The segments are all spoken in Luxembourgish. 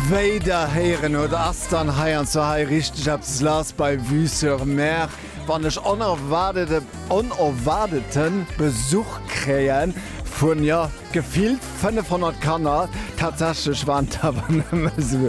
Wéi der héieren hutt, ass dann hei an zwar hei richteg eppes lass bei Vue sur Mer, wann ech onerwaardete onerwaardeten Besuch kréien vun, jo, gefillt 500 Kanner. Tatsächlech waren et awer nëmme sou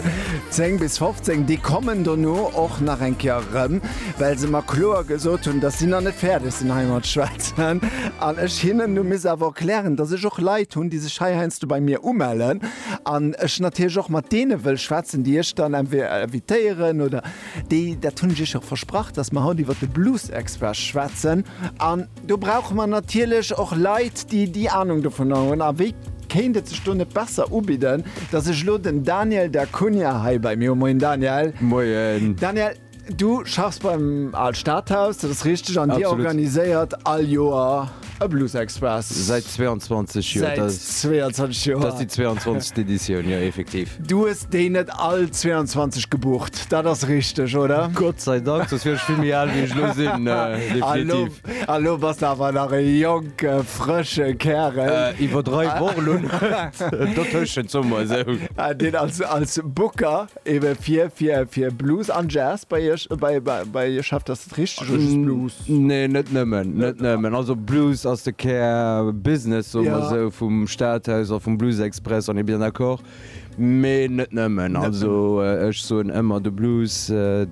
10 bis 15. Déi kommen dono och nach eng Kéier erëm, well se mer kloer gesot hunn, dass si nach net fäerdeg sinn hei mat schwätzen an ech hinnen hu misse awer erklären, dass ech och Leit hunn, déi sech hei heiansdo bei mir umellen. An ech natierlech och mat deene wëll schwätzen, déi ech dann entweder invitéieren oder déi, dat hunn ech iech och versprach, dass mer haut iwwer de Blues-Expert schwätzen. An do brauche mer natierlech och Leit, déi déi Anung dovunner hunn. A wie kéint et sech do net besser ubidden, dass ech elo den Daniel da Cunha hei bei mir hu. Moien Daniel. Moien. Daniel. Du schaffs beim Al Stadhaus, dat ass richteg, an Dir organiséiert all Joer e Blues Express. Säit 22 Joer. Säit 22 Joer. Dat ass déi 22. Editioun, jo, effektiv. Du hues déi net all 22 gebucht, dat ass richteg, oder? Gott sei Dank, soss wier ech vill méi al, wéi ech elo sinn, definitiv. A lo bass de awer nach e jonke, frësche Kärel. Iwwerdreiw och elo net dotëschent, soe mer esou. Deen als Booker Eben fir fir fir Blues an Jazz bei iech bei bei bei iech schafft ass et richteg oder just Blues? Nee net nëmmen net nëmmen also Blues ass de Kär Business soe mer Ja. esou vum Stadhaus a vum Blues Express on est bien d'accord mee net nëmmen also ech soen ëmmer de Blues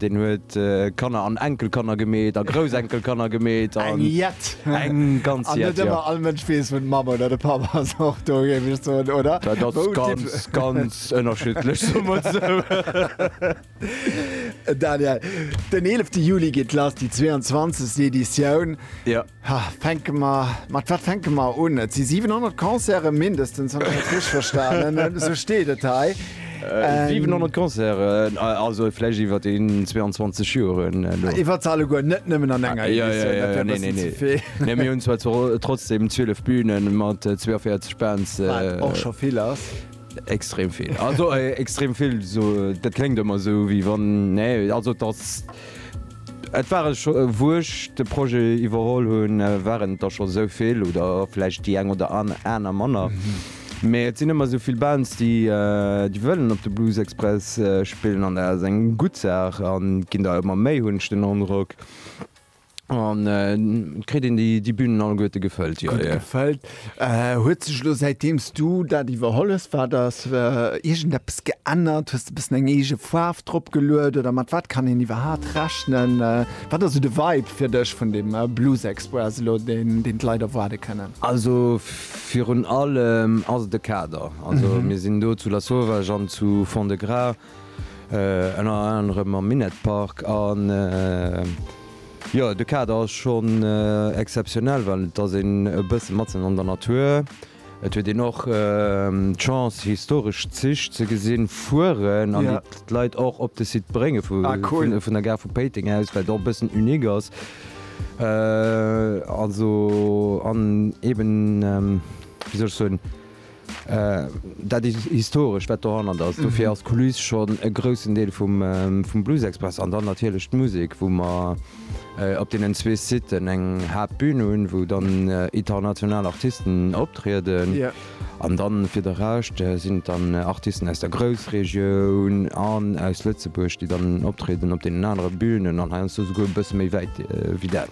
deen huet Kanner an Enkelkanner gemeet a Groussenkelkanner gemeet an Eng jett eng ganz an net jett ja. ëmmer all Mënsch weess wou d'Mamm oder de Papp ass och do géif ech soen oder? Dat ass Wou et ganz ganz Ganz ënnerschiddlech, soe mer esou. Daniel, den 11 Juli geet lass, déi 22. Editioun. Jo. Ha, fänke mer, mat wat fänke mer un? Et si 700 Concerten, mindestens, wann ech dat richteg verstanen hunn. Esou steet et hei. 700 Concerten, also vläicht iwwer déi 22 Joren elo. Iwwer se alleguer, net nëmmen an enger Editioun, dat wär e bëssen ze vill. Mä mir hunn zwar trotzdem 12 Bühnen mat 42 Bands. Wat och scho vill ass. Extrem vill. Also extrem vill, dat kléngt ëmmer esou wéi wann, nee, also et ass, et ware scho, wou ech de Projet iwwerholl hunn, waren et der scho esou vill oder vläicht déi eng oder aner manner, mee et sinn ëmmer esou vill Bands, déi wëllen op de Blues Express spillen an dat ass eng gutt Saach a ginn der ëmmer méi, hunn ech den Androck. An kritt een déi Bünen alleguerte gefëllt? Jo, jo. Gefëllt. Huet sech elo, säitdeems du dat iwwerholl hues, wat ass iergendeppes geännert? Hues de e bëssen eng eege Faarf drop geluet oder mat wat kann een iwwerhaapt rechnen? Wat ass esou de Vibe fir dech vun dem Blues Express elo, deen d'Leit erwaarde kënnen? Also virun allem ass et de Kader. Also mir sinn do zu Lasauvage an zu Fond-de-Gras. Ënner anerem am Minett Park an jo de Kader ass schonn exceptionnel, well et ass een e bësse matzen an der Natur. Et huet een och d'Chance historesch Zich ze gesinn fueren an d'Leit och op de Site brénge vun der Gare vu Péiteng aus, wat och e bëssen unique ass. Also an eeben, wéi soll ech soen? Dat Historescht, wat dohannert ass, dofir ass d'Kuliss schonn e groussen Deel vum Bluesexpress. An dann natierlech d'Musek, wou mer op deenen zwee Siten eng Haaptbün hunn, wou dann international Artisten optrieden. An dann fir de Rescht sinn et dann Artisten aus der Groussregioun an aus Lëtzebuerg, déi dann optrieden op deenen anere Bünen an heiansdo souguer e bësse méi wäit wéi dat.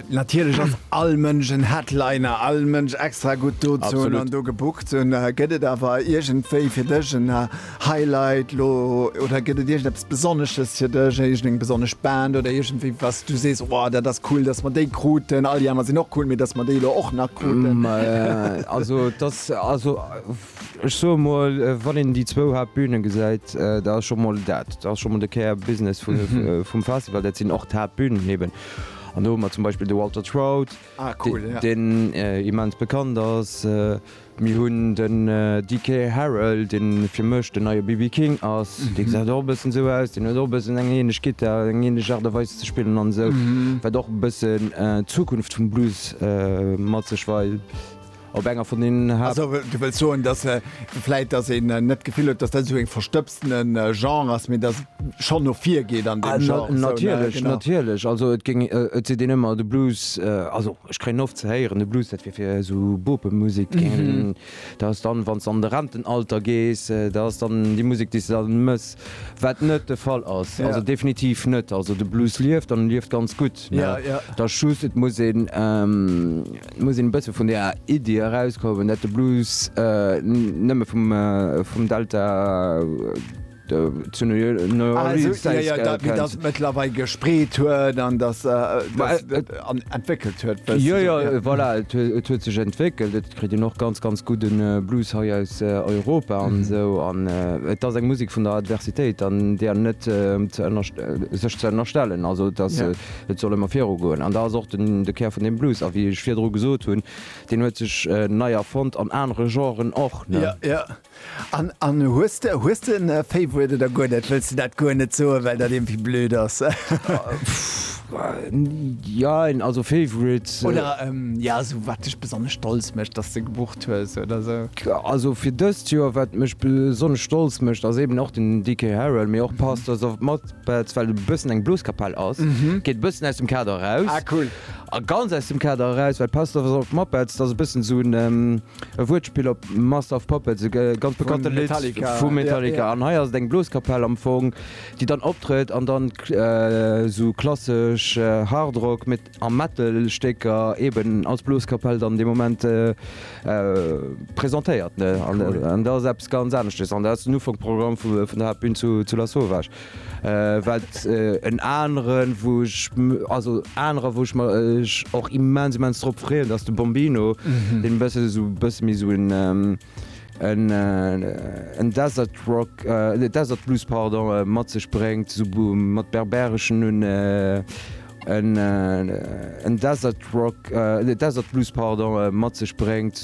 Natierlech ass all Mënsch en Headliner, all Mënsch extra gutt dozou an do gebookt. Gëtt et awer iergendwéi fir dech en Highlight lo oder gëtt et iergendeppes Besonnesches fir dech, iergendeng besonnesch Band oder iergendwéi was du sees, oh dat ass cool, datt mer déi kruten, all déi aner sinn och cool, mee datt mer déi elo och nach kruten? Also et ass, also Ech soe mol, wann een déi zwou Haaptbühne gesäit, da ass scho mol dat, da ass scho mol de Care Business vum Festival, dat sinn och d'Haaptbünen eben. An do hu mer zum Beispill de Walter Trout, deen immens bekannt ass. Mir hunn den DK Harrell, dee fir mech den neie BB King ass. Dee gesäit och e bëssen esou aus, deen huet och e bëssen eng änlech Gittar, eng änlech Aart a Weis ze spillen an esou, wat och e bëssen d'Zukunft vum Blues mat sech weist. Op enger vun den Haapt. Also, du wëlls soen, dass vläit, dass een net d'Gefill huet, dass dat esou e verstëbstene Genre ass, mee dass et schonn no vir geet an deem Genre, esou, ne? Natierlech, genau. Natierlech. Also et géing, et seet een ëmmer, de Blues, also ech kréien oft ze héieren, de Blues, dat wier fir esou Bopemusek, dat géing een, dat ass dann, wann s de an de Rentenalter gees, dat ass dann déi Musek, déi s de dann mëss, wat net de Fall ass. Ja. Also definitiv net. Also de Blues lieft an e lieft ganz gutt, ne? Ja, ja. Et ass just, et muss een. Et muss een e bësse vun där Iddi erauskommen, dat de Blues nëmme vum Delta zu New Orleans zäit gëllt. Dass et mëttlerweil gespreet huet an dass et entwéckelt huet e bëssen. Jo, jo, voilà, et huet sech entwéckelt. Et kritt een och ganz, ganz gudde Blues hei aus Europa an esou. An et ass eng Musek vun der Adversitéit an där net sech ze ënnerstellen. Also et ass. Et soll ëmmer viru goen an dat ass och de Kär vun deem Blues. A wéi ech virdru gesot hunn, deen huet sech nei erfonnt an anere Genren och. Jo, jo. An, an hues de, hues de en Favorite oder guer net? Wëlls de dat guer net soen, well dat iergendwéi blöd ass? Jein, also Favorite. Oder, ja, esou wat dech besonnesch stolz mécht, dass de gebucht hues oder esou. Also fir dëst Joer, wat mech besonnesch stolz mécht, ass eben och den Dickie Harrell, mee och Pastors of Mud. Well et e bëssen eng Bloskapell ass, geet e bëssen aus dem Kader eraus. Ah, cool. A ganz aus dem Kader eraus, well Pastor of Muppets, dat ass e bëssen esou e Wuertspill op Master of Puppets, e ganz bekannte Lidd vu Metallica. Vu Metallica. An hei ass et eng Bloskapell am Fong, déi dann optrëtt an dann esou klassesch Hard Rock, am Metal-Stécker eben als Bloskapell dann dee Moment presentéiert, ne? An dat ass eppes ganz aneschtes an dat ass den Ufank vum Programm vun der Haaptbün zu Lasauvage, well en aneren, wou ech, also anerer, wou ech mech och immens, immens drop freeën, dat ass de Bombino, deen e bësse esou, e bësse méi esou en Desert Rock, Desert Blues, pardon, mat sech bréngt, esou mat berbereschen un. en Desert Rock, Desert Blues pardon, mat sech bréngt.